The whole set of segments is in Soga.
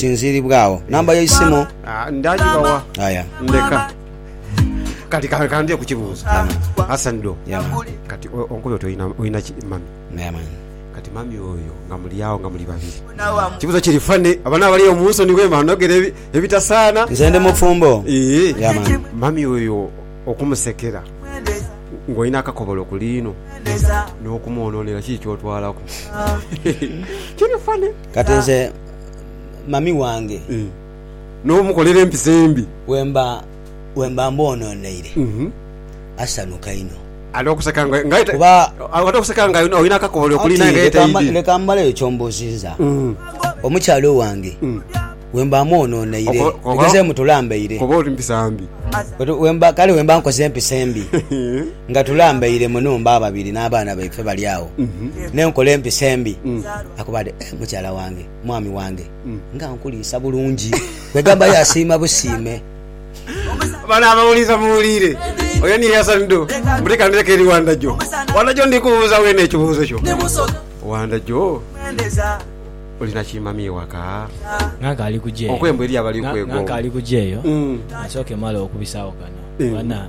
Sinziiribwa agho. Namba yo isimu? Ah, ndaagiba wa? Aya. Ndeka. Kati ka- kandye kukibuuza. Yeah, man. Hassan Do. Yeah, man. Kati o- onkobe oti olina- olina ki mami? Yeah, man. Kati mami oyo nga muli awo nga muli babiri. Kibuuzo kiri fane abana abali omu nsoni wema anogera ebi- ebitasaana. Nze ndi mufumbo. Ee. Yeah, man. Mami oyo okumusekera ng'olina akakobolo ku liino n'okumwonoonera kiki ky'otwalaku? Kiri fane. Kati nze mami wange. Eeh n'omukolera empisa embi. Wemba wemba mboononeire asanhuka inho. Ate okuseka nga nga aye ta Kuba ate okuseka nga olina akakooli okuli naye nga aye Anti leka taidhi. leka mmaleyo ky'ombuuzizza. Omukyala owange wemba mwononeire Oba oba bigezeemu tulambaire. oba oli mpisa mbi. Kati wemba kale wemba nkoze empisa embi. Nga tulambaire mu nhumba ababiri n'abaana baife bali agho, n'enkola empisa embi. Akuba ati, Eh, mukyala wange, mwami wange, nga nkuliisa bulungi! Kwegamba yaasiima busiime. Bano abawuliza muwuliire, oyo niye Hassan Do mbu leka ndhireke eri Wanda Jo. Wanda Jo ndi kubuuza weene ekibuuzo kyo. Wanda Jo, olina ki mami ewaka? Nga nkaali kuja eyo. Okwembu eriyo abali okwegoomba. Nga nkaali kuja eyo, kasooke male okubisaagho kano. Bana.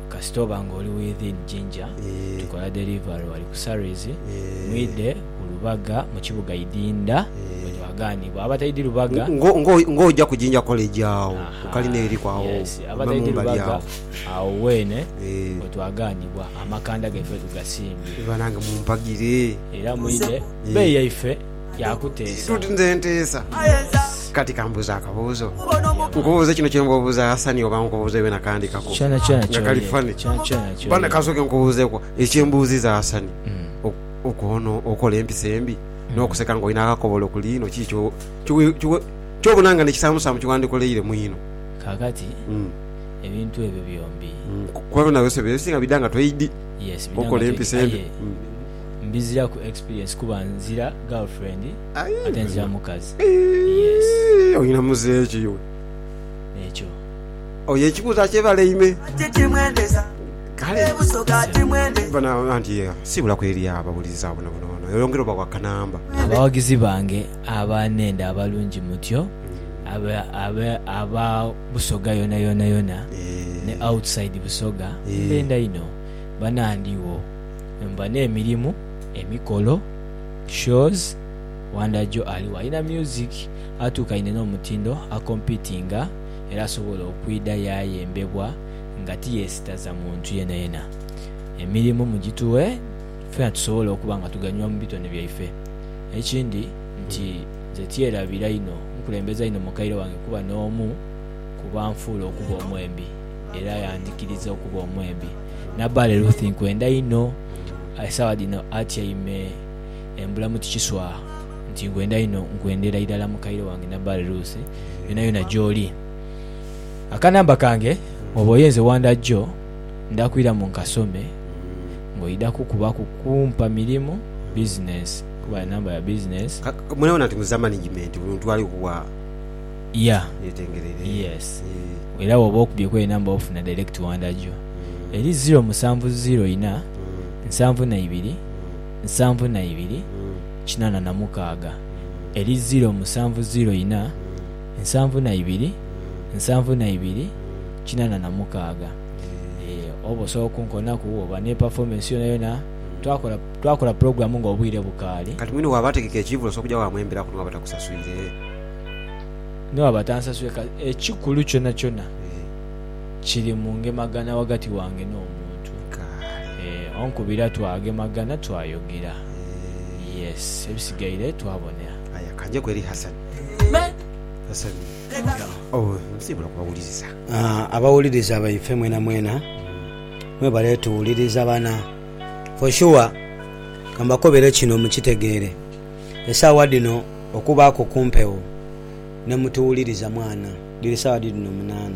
Kasita oba nga oli within Jinja, tukola delivery wali ku Surreys, mwidhe ku Lubaga mu kibuga Idinda bwe twagaanibwa. Abataidhi Lubaga. Ng'oja ku Jinja College agho ku kalina eriku agho ove mu mbali agho. Agho weene we twagaanibwa. Amakanda gaife tugasimbye. Banange mumpagire. Era mwidhe bbeyi yaife. yaakuteesa. Toti nze nteesa. Kati kambuuze akabuuzo. Nkubuuze kino kye ng'obuuza Hasani oba nkubuuze byona kandikaku Kyona kyona nga kali ky'oyenda. funny? Kyona kyona Bana ky'oyenda. kasooke nkubuuzeeku ekye mbuuziza Hasani. Ok- Okwono okola empisa embi n'okuseka ng'olina akakobolo ku liino kiki kyo- kyo- kyo- ky'obona nga n'ekisaamusaamu kye wandikoleire mwino? Kaakati, Mm. ebintu ebyo byombi. Mm. Kuba byona byose bye bisinga bidha nga toidi Yes, bidha nga okola toidi, empisa embi. aye- Mm. mbiziraku experience kuba nzira girlfriend ate nzira mukazi yes Oyina muzeeyi ki iwe? Ekyo. Oyo ekibuuzo akyebaleime. Kale. Banange anti ye siibulaku eri abawuliriza bonabona ono oyongere obawe akanamba. Abawagizi bange aba nenda abalungi mutyo abe aba busoga yona yona yona ne outside busoga mbenda inho banandhi wo. Nva n'emirimu, emikolo, shows, Wonder Joe aligho alina music atuukaine n'omutindo akompitinga era asobola okwidha yaayembebwa nga tiyeesitaza muntu yenayena. Emirimu mugituwe ffena tusobole okuba nga tuganyulwa mu bitone byaife. Ekindi nti nze tyerabira inho nkulembeza inho mukaire wange kuba n'omu ku banfuula okuba omwembi era yandhikiriza okuba omwembi. Nabbaale Ruthi nkwenda inho. Esaawa dhino atyaime embula mu tikiswa nti, Nkwenda inho, nkwendera irala mukaire wange Nabbaale Ruthi, yonayona gy'oli. Akanamba kange bw'oba oyenze wanda gyo, ndakwiramu nkasome ng'oidha kukubaku kumpa mirimu, bizinensi, kuba namba ya bizinensi. Mwenabona nti muza manigimenti, buli muntu ali kuwa. Yeah. Yetengerere. Yes. Eeh. Era bwoba okubye kweri number ofuna direct wanda gyo Mm. eri ziro musanvu ziro ina Mm. nsanvu na ibiri Mm. nsanvu na ibiri Mm. kinana na mukaaga Mm. eri ziro musanvu ziro ina Mm. nsanvu na ibiri Mm. nsanvu na ibiri Mm. kinana na mukaaga Eeh. eeh oba osobola okunkonaku oba ne performance yona yona Mm. twakola twakola program nga obwire bukaali. Kati mwine waba ategeka ekiivo osobola okuja wamwemberaku niwaba takusaswire? Ni bwaba tansasule ka, ekikulu kyonakyona kiri mu ngemagana ghagati wange n'omuntu. Eeh, onkubira twagemagana, twayogera. Yes, ebisigaire twabonera. Aye ka njeku eri Hassan. Hassan, owe, nsiibula kubawuliriza. Aah, abawuliriza baife mwenamwena, mwebale tuwuliriza bana. For sure, kambakobere kino mukitegeere. Esaawa dhino okubaaku ku mpewo ne mutuwuliriza mwana. Dhiri saawa dhidhino munaana.